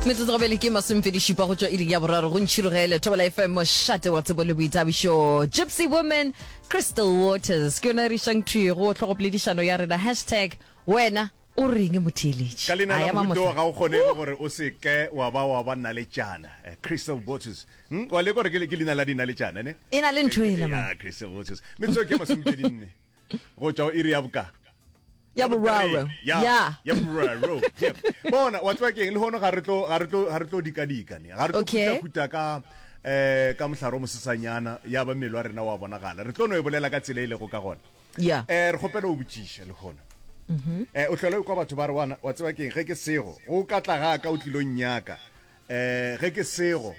metsotso go bele ke masomepedi šupa go tšwa iring ya boraro go ntšhirogele thobela fm mošate wa tsebo le boithabišo gypsy woman crystal waters ke yona re išang thwi go tlhogopoledišano ya rena hashtag wena o reng motheeletši ka leina la mohuto ga o kgonege gore o se ke wa ba wa ba nna le tšana eh, crystal waters hmm? wa leka gore ke leina la dina le tšana ne e na le ntho e lemang crystal waters metsotso ke masomepedi nne go tšwa o iri ya boka ya boraro ya ya boraro bona wa tswa keng le hono ga re tlo ga re tlo ga re tlo dika dika ne ga re tlo kuta kuta ka eh ka mohlaro mosesanyana ya ba mmele wa rena wa bonagala re tlo no e bolela ka tsela e lego ka gona ya eh re gopela o botšiša le hono mhm. eh o hlole kwa batho ba re wana wa tswa keng ge ke sego go ka tla ga ka o tlilong nyaka eh ge ke sego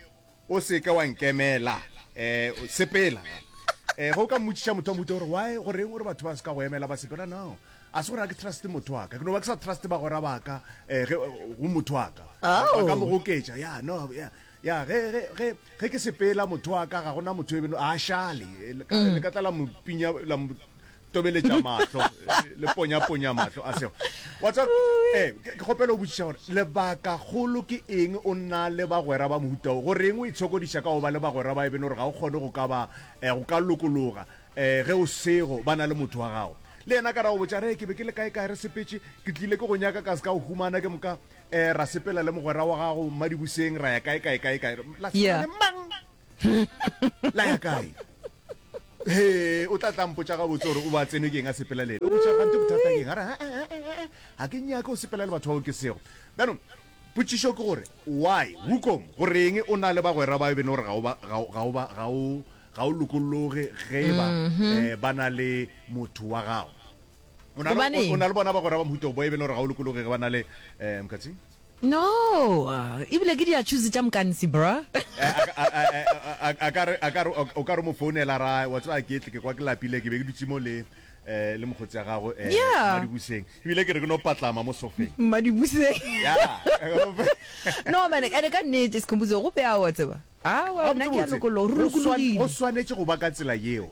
o se ke wa nkemela um sepela um ge o ka mmotšiša motho wa mohuta gore why goreng gore batho ba se ka go emela ba sepela no a se gore a ke truste motho wa ka ke no ba ke sa truste bagora ba ka um go motho wa ka ba ka mo goketša ya no ya ya ge ge ge ge ke sepela motho wa ka ga gona motho e beno a šale le ka tla la mo pinya la mo tobeletša mahlo le ponyaponya mahlo a sego wa tsa eh ke kgopela o botšiša gore lebaka kgolo ke eng o nna le bagwera ba mohutao go reng o itshokodiša ka go ba le bagwera ba e bene gore ga o kgone go ka ba eh, go ka lokologa eh ge o sego ba na le motho wa gago le yena ka ra go botša re ke be ke le kae kae re sepetse ke tlile ke go nyaka ka se ka go humana ke moka eh ra sepela le mogwera wa gago mmadibuseng ra ya kae kae kae kae la sepela Yeah. le mang la ya kae Hee, o tla tla mpotša gabotse gore o ba tsenwe ke eng a sepela le ena. Botša gante bothata ke eng? A re, "Ah, ah, ah, ah, ah, ga ke nyake o sepela le batho bao ke sego. Bjanong, potšišo ke gore, why, Wukong, goreng o na le bagwera bao e beno gore ga o ba, ga o, ga o ba, ga o, ga o lokologe ge e ba eh, ba na le motho wa gago? O na le, o, o Gobaneng? na le bona bagwera ba mohuta o bao e beno gore ga o lokologe ge ba na le, eh, Mkhatsing? No, ebile ke dia choose tša mkansi bruh. Eh, a, a, a, a, a, a ka re, a ka re, o ka re mo founela ra, wa tseba ke tle ke kwa ke lapile ke be ke dutse mo le eh le mokgotsi ya gago eh Yeah. madibuseng ebile ke re ke no patlama mo sofeng Madibuseng. ya No man, ene ka nnete Sikhumbuzo go beawa tseba. Aowa, nna ke a Gabotse-botse, lokologa, go swan- go lokologile. swanetše go ba ka tsela yeo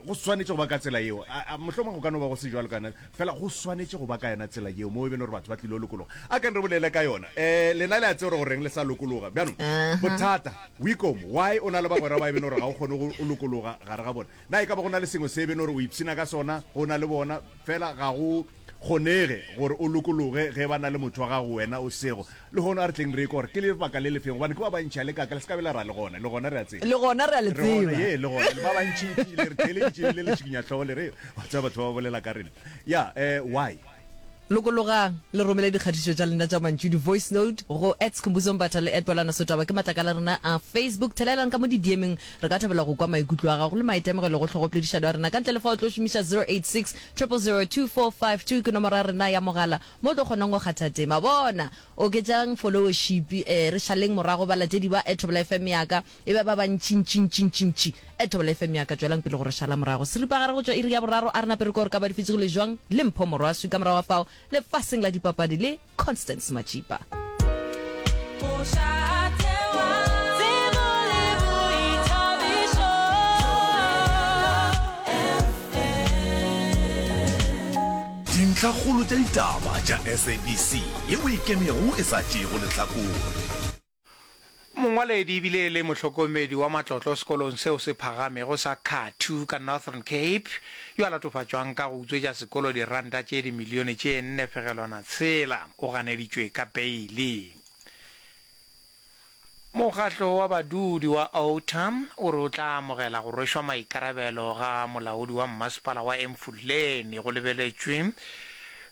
go swanetše go ba ka tsela yeo A- a, mohlomong go ka no ba go se jalo ka yona fela go swanetše go ba ka yona tsela yeo moo e be le gore batho ba tlile go lokologa a kang re bolele ka yona um lena le a tseo re go reng le sa lokologa bjanong bothata wicom why o na le bagwera ba e bene gore ga o kgone go o lokologa gare ga bona Na e ka ba go na le sengwe se e beno re o ipshina ka sona go na le bona? Fela ga go kgonege gore o lokologe ge ba na le motho wa gago wena o sego. Lehono a re tleng re ekwe gore ke lebaka le lefeng, gobane ke ba bantši a le kaka le se ka be la ra le gona, le gona re a tseba. Le gona re a le tseba. Re gona, ye, le gona, le ba bantšintši le re theeleditše le le tšhikinyahlogo le re, Wa tseba batho ba ba bolela ka rena. Ya, eh, why? Lokologang le romele dikgatišo tša lena tša mantšu, di-voice note, go at Skhumbuzo Mbatha le at Bwelana Sotaba, ke matlakala a rena a Facebook. Thelelang ka mo didiemeng, re ka thabela go kwa maikutlo a gago le maitemogelo go hlogopoledišano ya rena. Ka ntle le fa o tlo šomiša 0860002452, ke nomoro ya rena ya mogala mo o tlo kgonang go kgatha tema. Bona! Oketšang folowošipi, re šaleng morago balatedi ba at Thobela FM ya ka. E ba ba bantšintšintšintšintši. Ethobela FM ya ka, tšwelang pele go re šala morago. Seripagare go tšwa iri ya boraro a re nape re kore ka ba difetsi go le jwang le Mpho Morwaswi, ka morago ga fao lefaseng la dipapadi le Constance Matšipa. Dintlhakgolo tša ditaba tša SABC ye o e kemego e sa tšeego lehlakore. Mongwaledi e bile e le mohlokomedi wa matlotlo sekolong seo se phagamego sa Kathu ka Northern Cape, yo a latofatšwang ka go utswetša sekolo diranta tše dimilione tše nne fegelwana tshela, o ganeditšwe ka beile. Mokgatlo wa badudi wa Outa o re o tla amogela go rwešwa maikarabelo ga molaodi wa mmasepala wa Emfuleni go lebeletšwe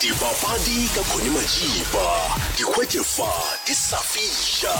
Dipapadi ka Connie Majiba, di hwetše fa di sa fihla.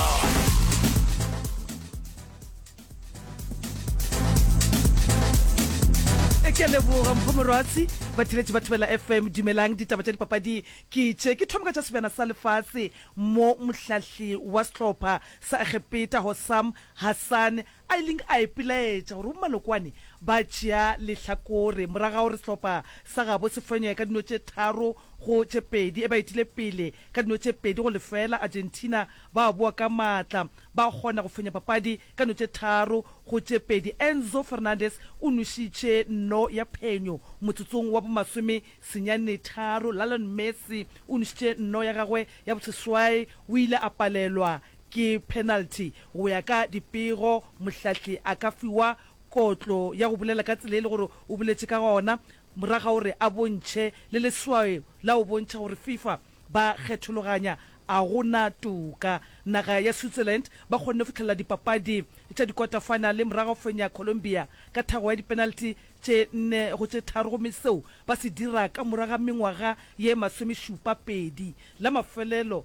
ke a leboga mpho morwatsi batheletši ba thobela fm dumelang ditaba tša dipapadi ke tše ke thoma ka tša sebjana sa lefase mo mohlahli wa sehlopha sa egepeta hosam hassan A ileng a ipelaetša gore bomalokwane ba tšea lehlakore morago ga gore sehlopha sa gabo se fenye ka dino tše tharo go tše pedi e ba etile pele ka dino tše pedi go lefeela. Argentina ba boa ka maatla ba kgona go fenya papadi ka no tše tharo go tše pedi. Enzo Fernandez o nwešitše no ya phenyo motsotsong wa bomasome senyane tharo. Lionel Messi o nwešitše no ya gagwe ya boseswai, o ile a palelwa Ke penalty go ya ka dipego, mohlahli a ka fiwa kotlo ya go bolela ka tsela e le gore o boletše ka gona morago ga gore a bontšhe le leswaeo la go bontšha gore Fifa ba kgethologanya. A go na toka. Naga ya Switzerland ba kgonne go fihlelela dipapadi tša dikota-finale morago ga go fenya Colombia ka thago ya dipenalty tše nne go tše tharo gomme seo ba se dira ka morago ga mengwaga ye masomešupa pedi. La mafelelo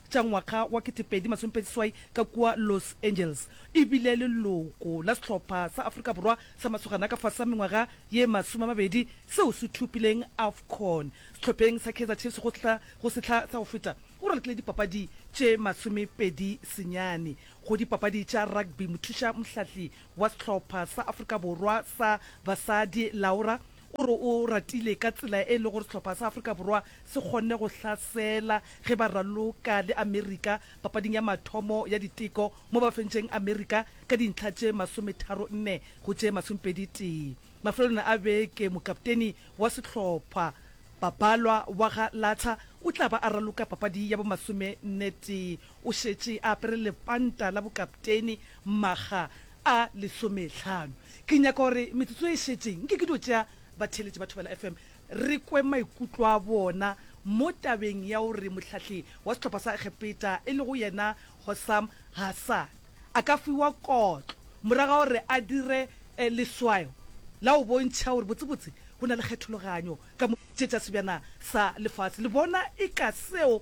tša ngwaga wa ketepedi masomepedi seswai ka kua Los Angeles. E bile leloko la sehlopha sa Afrika Borwa sa masogana ka fase ga mengwaga ye masome-a-mabedi seo se thopileng Afcon sehlopheng sa Kaizer Chiefs go sehla go sehla sa go feta. O ralokile dipapadi tše masomepedi senyane go dipapadi tša rugby. Mothuša mohlahli wa sehlopha sa Afrika Borwa sa basadi Laura O re o ratile ka tsela e lego gore sehlopha sa Afrika Borwa se kgonne go hlasela ge ba raloka le Amerika papading ya mathomo ya diteko mo ba fentšeng Amerika ka dintlha tše masometharo nne go tše masomepedi tee. Mafelelong a beke mokapteni wa sehlopha Babalwa Waga Latha o tla ba a raloka papadi ya bo masome nne tee O šetše a apere lepanta la bokapteini makga a lesomehlano. Ke nyaka gore metsotso e šetšeng nke ke dio tšea batheeletši ba Thobela FM re kwe maikutlo a bona mo tabeng ya gore mohlahli wa sehlopha sa Egepeta e lego yena Hossam Hassan a ka fiwa kotlo morago ga gore a dire leswayo la go bontšha gore botsebotse go na le kgethologanyo ka mo tše tša sebjana sa lefase. Le bona eka seo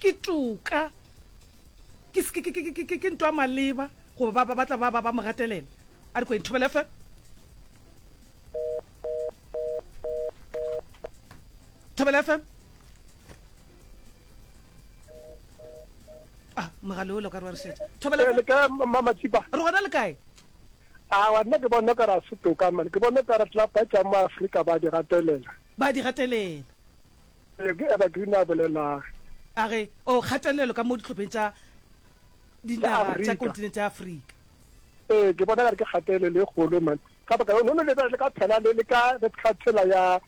Ke toka, ke, ke ntwa maleba, goba ba, ba, ba tla ba, ba, ba mo gatelela. A re kweng, Thobela FM. Thobela FM. Ah, mogale o lo ka re wa re šetša. Thobela FM. Le ka Mama Tsipa. Re gona le kae? awa nna ke bona ka ra se toka mane ke bona ka re tla ba tsa mo Afrika ba di gatelela ba di gatelela Ee, ke Evergreen a bolelago. A re, O kgatelelo ka mo dihlopheng tša dinaga tša kontinente ya Afrika. Ee, ke bona gare ke kgatelelo e kgolo man. Ka baka no no lebe le ka phela le le ka re phela phela ya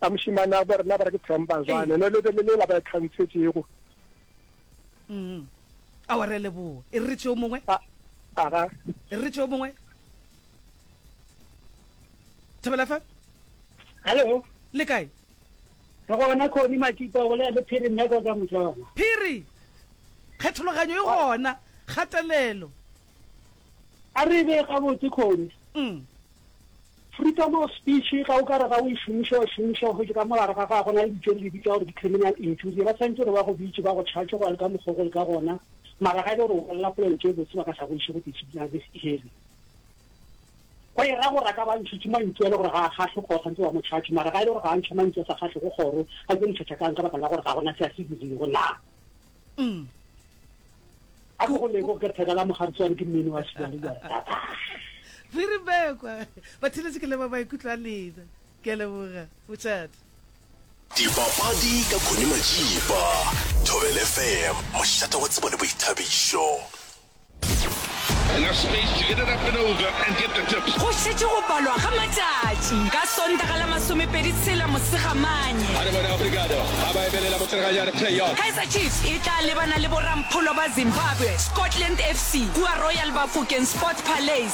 ya moshimana ba rena ba re ke themba jane no lebe le le la ba e khantshetšego. Mm. A wa re leboa. E re tšeo mongwe. A aga. E re tšeo mongwe. Thobela fa. Hello. Le kae? Ke gona Connie Matipa o bolela le Phiri Meko ka mohlolo. Phiri, Kgethologanyo e gona, kgatelelo. A re e bee gabotse Connie. Freedom of speech ga o ka re ga o e šomiša, o e šomiša gotše ka mo gare ga gago na le ditše re di bitša gore ke criminal injury. Ba swantše gore ba go bitše, ba go charge go ya le ka mokgwa o go le ka gona. Mara ga e le gore o bolela polelo tše botse ba ka sa go iše go disciplinary hearing. Go e ra gore a ka ba ntšhitše mantšu a le gore ga a kgahlwe kgoro gantsi ba mo tšhatše, mara ga e le gore ga a ntšha mantšu a sa kgahlego kgoro, a tlo ntšhatša ka'ng ka baka la gore ga go na se a se dirego na? A ke go lebo ke theka la mogaritswane ke mmini wa sibjale jwale tata. Phiri Mekwa, Batheletše ke leba maikutlo a lena. Ke a leboga, Motšate. Dipapadi ka Connie Majiba, Thobel FM, mošate wa tsebo le boithabišo. Go šetše go balwa ga matšatši ka Sontaga la masomepedi tshela Mosegamanye, Kaizer Chiefs e tla lebana le borampholo ba Zimbabwe, Scotland FC, kua Royal Bafokeng Sport Palais.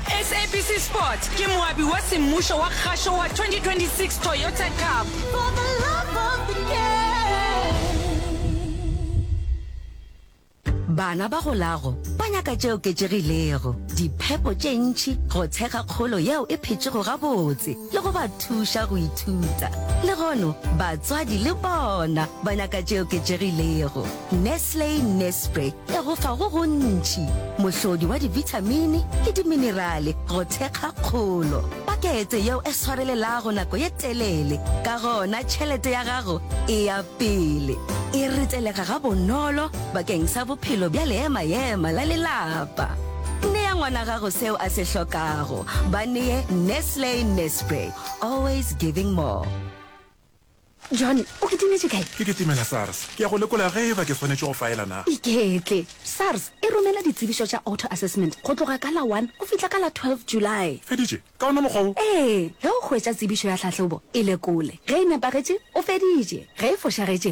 SABC Sport ke moabi wa semmušo wa kgašo wa 2026 Toyota Cup. For the love of the game. Bana ba go lago ba nyaka tše oketšegilego, diphepo tše ntši go tshega kgolo yeo e phetšego gabotse le go ba thuša go ithuta. Le gono batswadi le bona ba nyaka tše oketšegilego. Nestle Nespre e go fa go gontši, mohlodi wa dibithamini le diminerale go thekga kgolo. Pakete yeo e swarelelago nako ye telele, ka gona tšhelete ya gago e ya pele. E ritelega gabonolo bakeng sa bophelo bja leema-ema la lelapa. Nea ngwana gago seo a se hlokago. Ba nee Nestle Nespre, always giving more. John, o kitimetše kae? Ke kitimela SARS. Ke ya go lekola ge eba ke swanetše go faela na. Iketle. SARS e romela ditsebišo tša auto assessment go tloga ka la one go fihla ka la twelve July. Feditše ka wona mokgwa wo? Ee, ge o hwetša tsebišo ya tlhahlobo, e lekole. Ge e nepagetše, o feditše. Ge e fošagetše,